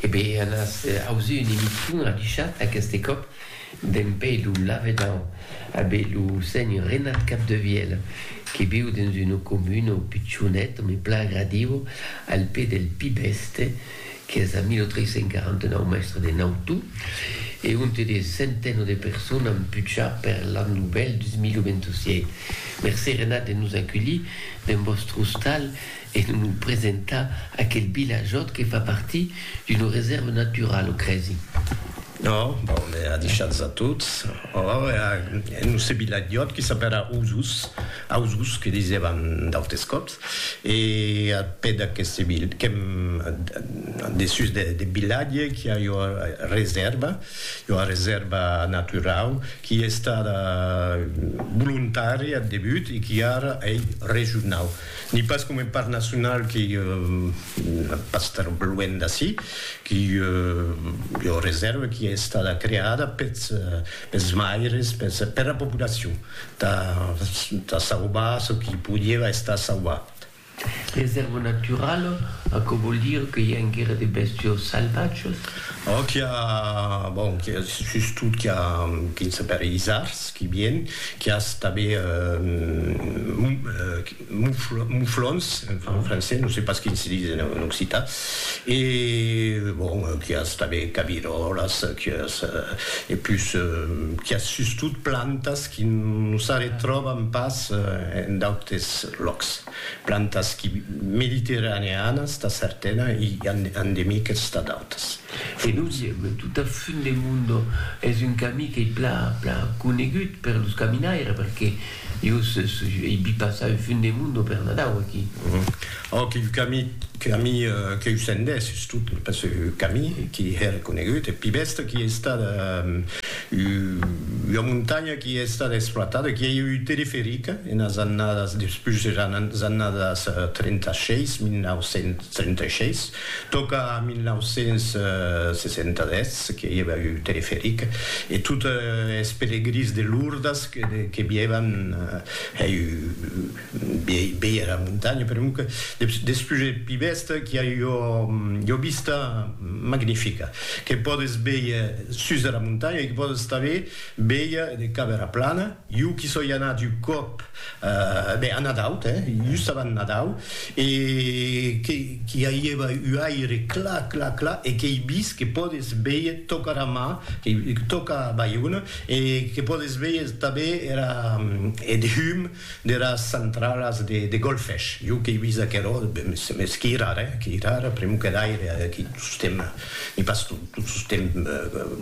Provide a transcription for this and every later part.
E be an as ausi un emission adichat aqueste còp d'en pè lo lavedan a be lo seny Renat Capdevièl que viu dens una comuna au pichonet me plan agradiu al pè del Pi Bèste qu'es a 1349 mèstre de Nautu e onte de centeno de persones an puchar per l'an novèl 2027. Mercé Renat de nos aculhir dens vòstre ostal e de nos presentar aquel vilajòt que fa partir d'una resèrva naturala, o crèsi? Ò, bon, me a deishats a tots. Ò, e a nosse vilajòt que s'apèra Osus, Ausus que disèvan d'autes còps, e a pè d'aqueste vil, qu'èm dessús deth vilatge, qu'i a ua resèrva, ua resèrva naturau, qu'i estada volontària ath debut e qu'i ara ei regionau. Ni pas coma un parc nacional qui pas tar luènh d'ací, qui ei ua reserva qui ei estada creada peths maires, pera populacion, tà sauvar çò qui podieva estar sauvat. Reserva naturala, aquò vòl dire que i a enguera de bèstios salvatges? Ò qu'i a, bon, qu'i a sustot qu'i a quin s'appelle isards qui vien, qu'i as tanben mouflons, mouflons en français, non se pas quin se dis en occitan, e bon, qu'i as tanben cabiròlas, qu'i as e pus qu'i as sustot plantas qui non s'arretròban pas en d'autes lòcs. Plantas qui mediterraneanas tà certana i endemiques tà d'autas. E nosieble tot a fun de mundo es un camí qu'ei plan plan conegut per los caminaires perque jo ei vist passar au fun de mundo per Nadau aquí. Òc, un camí camí qu'eu sendés sustot pas un camí qui hè reconegut, eth pi bèsta qui ei estat Ua montanha qui a estat exploitada, qui a ieu un teleferic enas annadas, despús eras annadas 36, 1936, tòca a 1967 que i ava un teleferic e tot es pelegrins de Lourdes que vievan hèi Veia era montanha perunque despús eth pi bèsta qu'i a ua vista magnifica que pòdes veir sus dera montanha e que pòdes tanben veir de cap era plana. Jo qu'i soi anat un còp a Nadau, just abans Nadau, e qu'i aieva un aire clar, clar, clar e qu'ei vist que pòdes veir tòca era mar, tòca Baiona e que pòdes veir tanben era eth hum deras centralas de golfesh, jo qu'ei vist aquerò, mès qu'i rara, eh, qu'i rara, primo que d'aire, aqui tostemp n'i pas tot, tot tostemp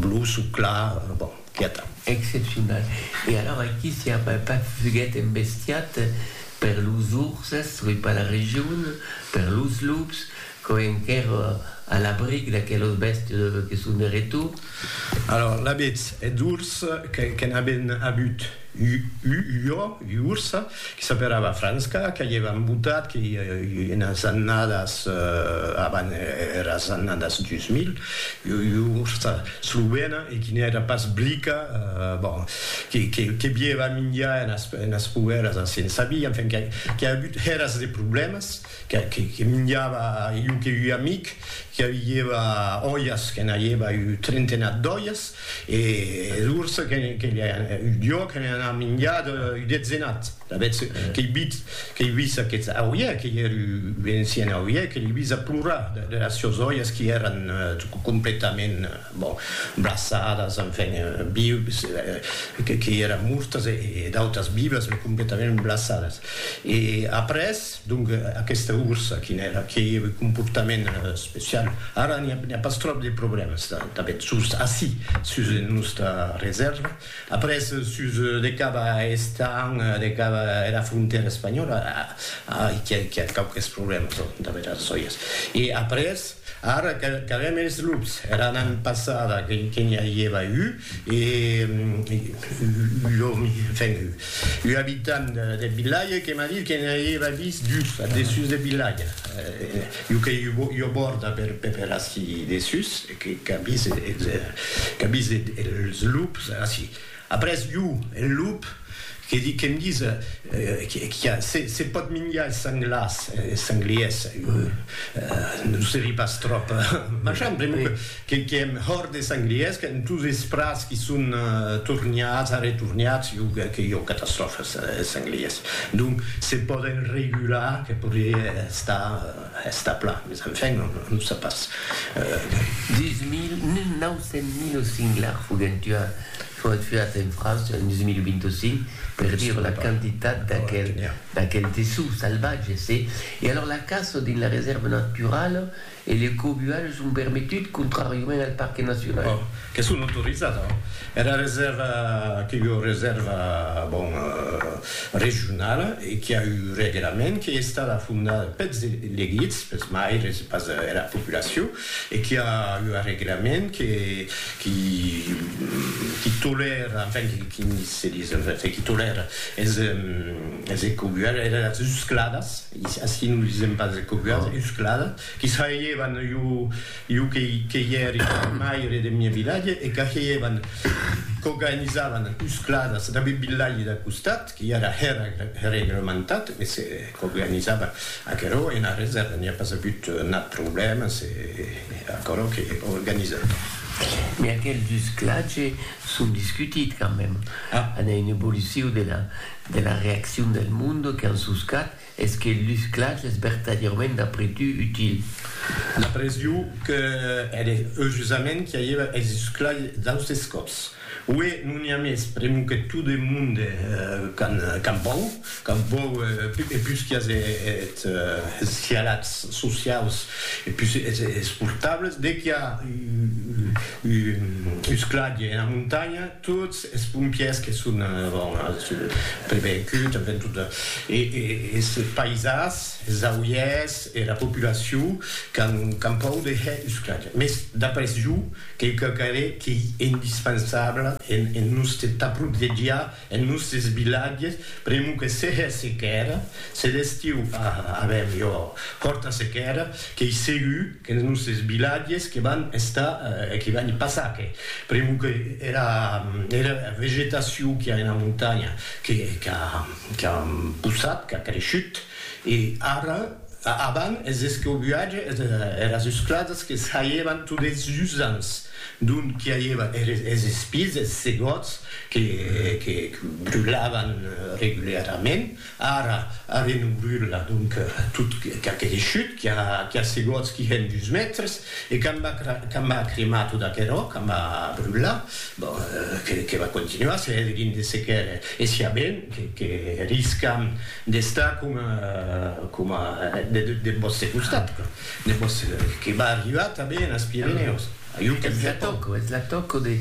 bluç o clar, bon, quieta. Excepcional. E alors aqui s'i a pas fuguet embestiat per los urses, soi pas la region, per los lups, Quò enquèr a l'abric d'aquelos bèstes que son de retor. Alòr, l'abetz eth urs que n'aben abut u jo, u urs, que s'aperava Franska, que i èvan botat que i enas annadas avan eras annadas 2000, u ursa slovena e qui n'èra pas blica, bon, que bièva minjar enas poèras a Sensabí, enfin, qu'a abut eras de problèmas. que minjava illo que ua amic que avieva olhas que n'aieva un trentenat d'olhas e d'ors que jo que n'ai anat minjat un detzenat d'avetz qu'ei vit qu'ei vist aqueth auie qu'ei er un encien auie que l'ei vist a plorar deras sios olhas qui eran completament bon braçadas enfin vius qu'ei eran mortas e d'autas vivas me completament braçadas e après Donc aquesta ursa quin èra? Qué comportament especial? Ara n'i a pas tròp de problèmas tanben sus ací, sus nosta resèrva. Après sus de cap a Estañ, de cap a era frontèra espanhòla, ai qu'i a quauques problèmas damb era sòias. E après ara qu'avèm es lups, era annada passada que n'i a ieva un, E ua abitant deth vilatge que m'a dit que ne auieva vist dus ath dessús deth vilatge. Ua qu'ei ua bòrda per ací dessús, qu'a vist es lups ací. Après ua, eth lup, que'm ditz que se pòt minjar es sanglars, es sangliers, non se ri pas tròp, machan, pr'amor que Que qu'èm hòrt des sanglièrs, qu'èm tous esprats qui son torniats, arretorniats, jo que que jo catastròfa es es sanglièrs. Donc se pòden regular que podrié estar estar plan, mes enfin on on sap pas. Deus mil, mil nau cent mil singlars foguèn tuat, foguèt tuats en França en 2025, per dire la quantitat d'aquel d'aquel dessous salvatge, se. E alors la caça dins la resèrva naturala E le cobualh son permetut contràriament al parque nacional. Bon, que son autorizat, hein. Era resèrva que ua resèrva, bon, regionala e qui a un reglament qu'ei estada fondada peths elegits, peths maires e pas era populacion e qui a ua reglament que qui qui tolèra, enfin, qui se dis, enfin, qui tolèra es es ecobualhs, eras uscladas. Ací nos disèm pas de coguas uscladas, qui sahelhevan iu que i ère maire deth mieu vilatge e qu'ahelhevan coganizavan uscladas dab eth vilatge dau costat, qui ara hèra reglementat, e se coganizavan. Aquerò ena resèrva n'i a pas avut nat problèma, se aquerò qu'ei organizat. Mès aquels usclatges son discutit quand même, an a un evoluciu de la. de la reaccion del monde que an suscat es que lu sclatge es vertadièrament d'apretu util. La presio que er eujusament qu'i aieva es susclatge d'austes còps. Ué, non i a mès, premu que tot e monde qu'an vòu, qu'an vòu e pus qu'i as eth scialats sociaus e pus esportables, de qu'i a u sclatge ena montanha, Tots es pompièrs que son prevenguts, avèm tot es païsas, es auièrs, era populacion qu'an pòur de hèr usclatge. Mès d'après jo, qu'ei quauquarre qu'ei indispensable en nòste tà protegiar es nòstes vilatges, pr'amor que se hè sequèra, se d'estiu avèm ua hòrta sequèra, qu'ei segur, Que es nosses vilatges que van estar e que van passar que pr'amor que era era vegetacion qu'i a ena montanha que qu'a qu'a possat, qu'a creishut e ara avan es escobuatge es eras esclasas que saievan tot es usants d'ont qu'i aieva eres es espises, es segòts que que que brulavan reguliarament Ara, ara non brula, donc, tot qu'aquele chut qui a segots qui hèn dus mètres, e qu'a m'a cremar tot aquerò, qu'a m'a brular, bon, que va continuar, se hè de vindre sequèr, e siá ben que riscam d'estar coma deth vòste costat, que va arribar tanben as Pirenèus. Ath Pirenèus. Eth la tòca, eth la tòca de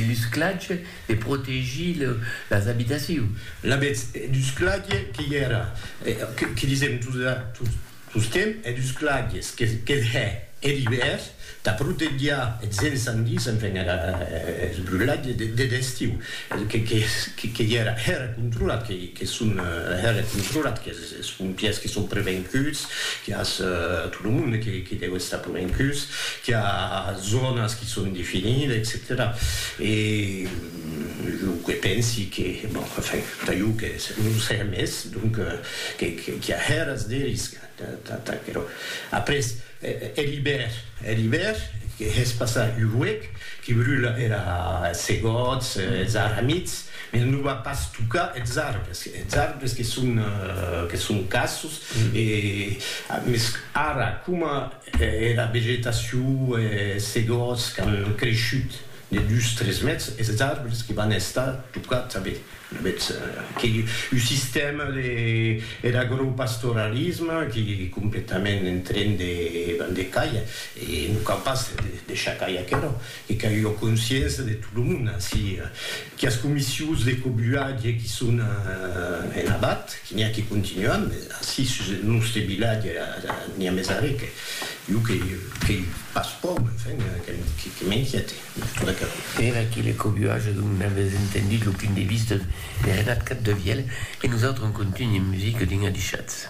lusclatge De protegir las abitacions. La bètz e dus clague que i èra, que disèm tostemp, e dus clagues que hè er ivèr, tà protegiar eths ensandis, enfin eths brulatges deth estiu, que i èra hèra controlat, que son hèra controlat, que. Es pompièrs que son prevencuts, qu'i a tot lo monde que deu estar prevencuts, qu'i a zònas que son definidas, etcetèra. E jo que pensi que, bon, enfin, tà jo que non sèia mès, donc, qu'i a hèras de risc tà aquerò. Après, hè l'ibèr, hè l'ibèr, que hè's passar un huec, que brula era es segòts, es arramits, Eth non va pas tocar eths arbres, eths arbres que son, que son cassos, e mès ara coma era vegetacion, es segòts qu'an creishut de dus, tres mètres, eths arbres que van estar tocats a bèth, a bèth, qu'ei un sistèma de er agropastoralisme qu'ei completament en tren de, ben, de cair, e non cau pas deishar cair aquerò. E qu'a ua consciença de tot lo monde ací, quias comissius de cobulatge qui son en abat, qui n'i a qui continuen, mes ací sus eth nòste vilatge n'i a mes arrè que jo que qu'ei pas pòur, enfin, que m'inquiète. Era que le cobulatge dont n'avètz entendut lo punt de vista de Renat Capdevièlh e nosautres en contunh en musica dins Adishatz.